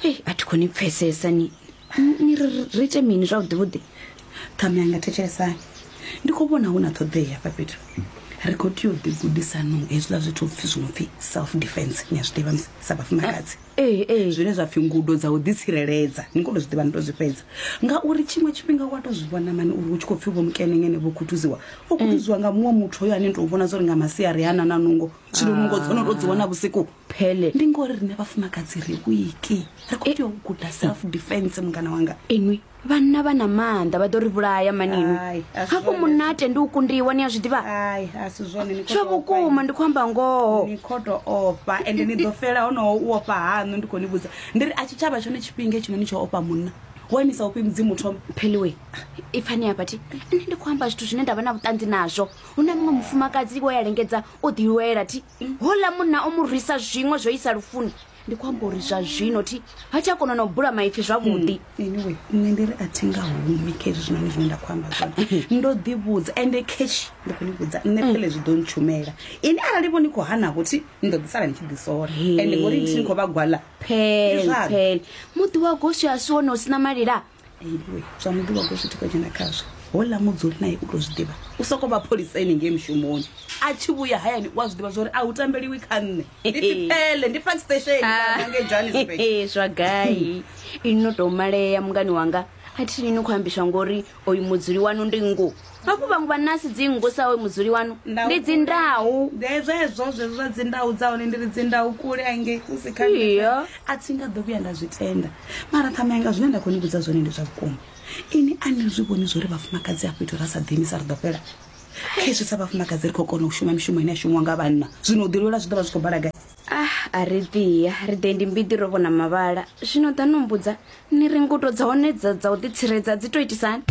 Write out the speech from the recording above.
hei a thi khoni pfesesa ni ni- ni ri ri ite mini zwavhuḓi vhuḓi ṱhame anga thetshelesani ndi khou vhona hu na ṱhoḓea hafha fhethu ri khou tea u ḓigudisanong hezwiḽa zwithu pfhi zwi no pfhi self defense ni a zwi ḓivha musi sa vhafumakadzi ee ee zwine zwa pfhi ngudo dza u ḓitsireledza ni kolo zwi ḓivha ni to zwi fhedza ngauri tshiṅwe tshifhinga wa to zwi vhona mani uri hu tshi khou pfhi vho mukenengene vho khuthuziwa o khuthuziwa nga muṅwe muthu hoyo ane ni tou vhona zwo ri nga masiari hana na nungo zwino nungo dzo no to dzi wana vhusiku phele ndi ngori rine vhafumakadzi ri wiki ri khou tea u guda self defense mungana wanga inwi vhanna vha na maanḓa vha ḓo ri vhulaya maninwi Ai, a si hafho zwone. munate ndi u kundiwa ni a zwi ḓivha ai a si zwone ni khou tsho tou ofha vhukuma ndi khou amba ngoho ni khou tou ofha ende ni ḓo fela honoho u ofha haṋu ndi khou ni vhudza ndi ri a tshi tshavha tshone tshifhinga tshino ni tsho ofha munna wa imisa ufhi mudzimu thoma pheliwe i pfani hafha thi nṋe ndi khou amba zwithu zwine nda vha na vhuṱanzi nazwo hu na muṅwe mufumakadzi wo ya lengedza o ḓilwela thi houḽa munna o mu rwisa zwiṅwe zwo isa lufuni ndi khou amba uri zwa zwino thi ha tsha kona na u bula maipfi zwavhuḓi hmm, anyway nṋe ndi ri a thi nga humi kha izwi zwinoni zwine nda khou amba zwone ndo ḓivhudza ende cash ndi khou ni vhudza nṋe hmm. phele zwi ḓo ntshumela ini arali vho ni khou hanavho thi ni ḓo ḓisala ni tshi ḓisola ende ngori thi ni khou vha gwala phele phele muḓi wa goswi a si wone u si na malila iwe zwa muḓivha u tou zwi tika dzhena khazwo hola mudzuli naye u tou zwi ḓivha u sokou vha pholisa ene ngei mushumoni a tshi vhuya hayani u a zwi ḓivha zwa uri a hu tambeliwi kha nṋe ndi tipele ndi park station ngei johannesburg Ee, zwa gai ini no tou malea mungani wanga a thi ni ni khou ambiswa ngori oyu mudzuli wanu ndi ngo hafhu vhaṅwe vha nasi dzingu sa oyo mudzuli wanu Ndau ndi dzindau Nde zwezwo zwezwo zwa dzindau dza hone ndi ri dzindau kule angei hu si kha Iyo. a thi nga ḓo vhuya nda zwi tenda mara ṱhama yanga zwine nda khou ni vhudza zwone ndi zwa vhukuma ini a ni zwi vhoni zwo ri vhafumakadzi a fhethu ra sa ḓiimisa ri ḓo fhela khezwi sa vhafumakadzi ri khou kona u shuma mishumo ine ya shumiwa nga vhanna zwino u ḓilwela zwi ḓo vha zwi khou bala gai ah a ri ḓiya ri ḓe ndi mbiḓi ro vhona mavhala zwino ḓa no mbudza ni ri ngudo dza hone dza dza u ḓitsiredza dzi to itisani